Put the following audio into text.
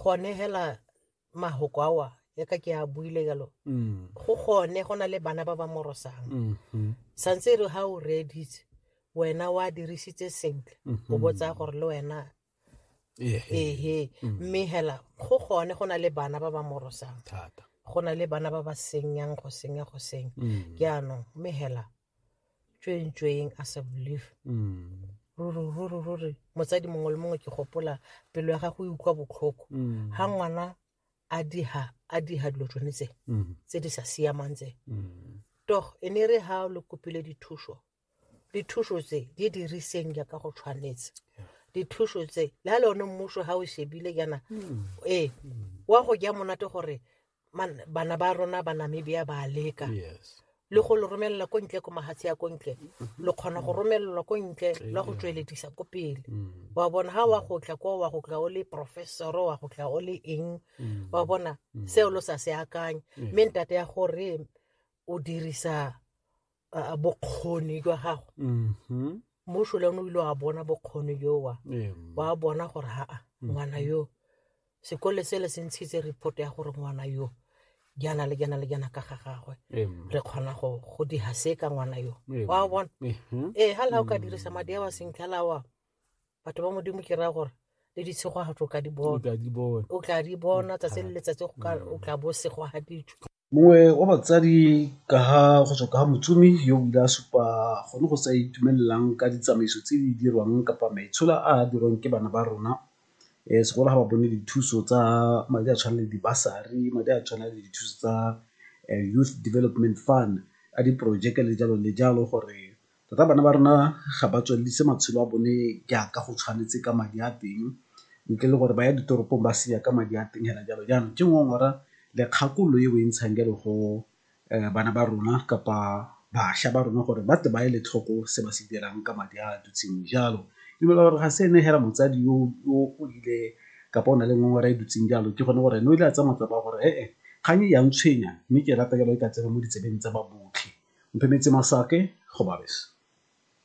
gone hela mahoko awa ya ka ke a buile jalo mm. go gone go na le bana ba ba morosang mm-hmm. santse e re ga o reeditse wena wa dirisitse sentle o mm-hmm. botsa gore le wena ehe mm. mme hela go gone go na le bana ba ba morosang go na le bana ba ba senyang go senya go senya mm. ke anong mme hela tšweng tšweng a sa believe mm. ruri ruri ruri motsadi mongwe le mongwe ke gopola pelo ya gago e utlwa botlhoko mm. ga ngwana a diga a diga dilo tsone tse mm. tse di sa siamang tse toh e ne re ga le kopile dithuso dithuso tse di diriseng jaaka go tshwanetse dithuso tse le ga le one mmuso ga o shebile jaana ee wa go ja monate gore man- bana ba rona ba namibia ba leka yes le go le romelela ko ntle ko mahatshe ya ko ntle lo kgona go romelelwa ko ntle la go tsweledisa ko pele Mm. wa bona ha wa go tla ko wa go tla o le professor wa go tla o le eng Mm. wa bona seo lo sa se akanye mme ntate ya gore o dirisa bokgoni jwa gago mm-hmm. mmuso le one o ile wa bona bokgoni jowa wa bona gore haa mm-hmm. ngwana yo sekole sele se ntshitse report ya gore ngwana yo jana le jana le jana ka ga gagwe re kgona go go diha se ka ngwana yo wa bona ee ga la o ka dirisa madi a wa sentle la wa batho ba modimo ke raya gore le ditshegogatso o ka di bona o tla di bona tsatsi le letsatsi o tla bo segogaditswe mongwe wa batsadi ka ga go tswa ka ga motsomi yo o ile a supa gone go sa itumelelang ka ditsamaiso tse di dirwang kapa maitshola a a dirwang ke bana ba rona um segolo ga ba bone dithuso tsa madi a tshwana le dibasari madi a tshwana le dithuso tsa eh, youth development fund a diporojeke le jalo le jalo gore Tota bana ba rona ga ba tswelelise matshelo a bone jaaka go tshwanetse ka madi a teng ntle le gore ba ya ditoropong ba senya ka madi a teng hela jalo. Jaanong ke ngongora le kgakololo e o e ntshang jalo go bana ba rona kapa bašwa ba rona gore ba tle ba ele tlhoko se ba se dirang ka madi a dutseng jalo. Ke dumela gore ga se ene hela motsadi yo o ile kapa o na le ngongora e dutseng jalo, ke gone gore ene o ile a tsaya matsapa a gore ee, kgang e ya ntshwenya mme ke rata jalo e ka tsena mo ditsebeng tsa ba botlhe. Mphemetse Masake, Gobabis.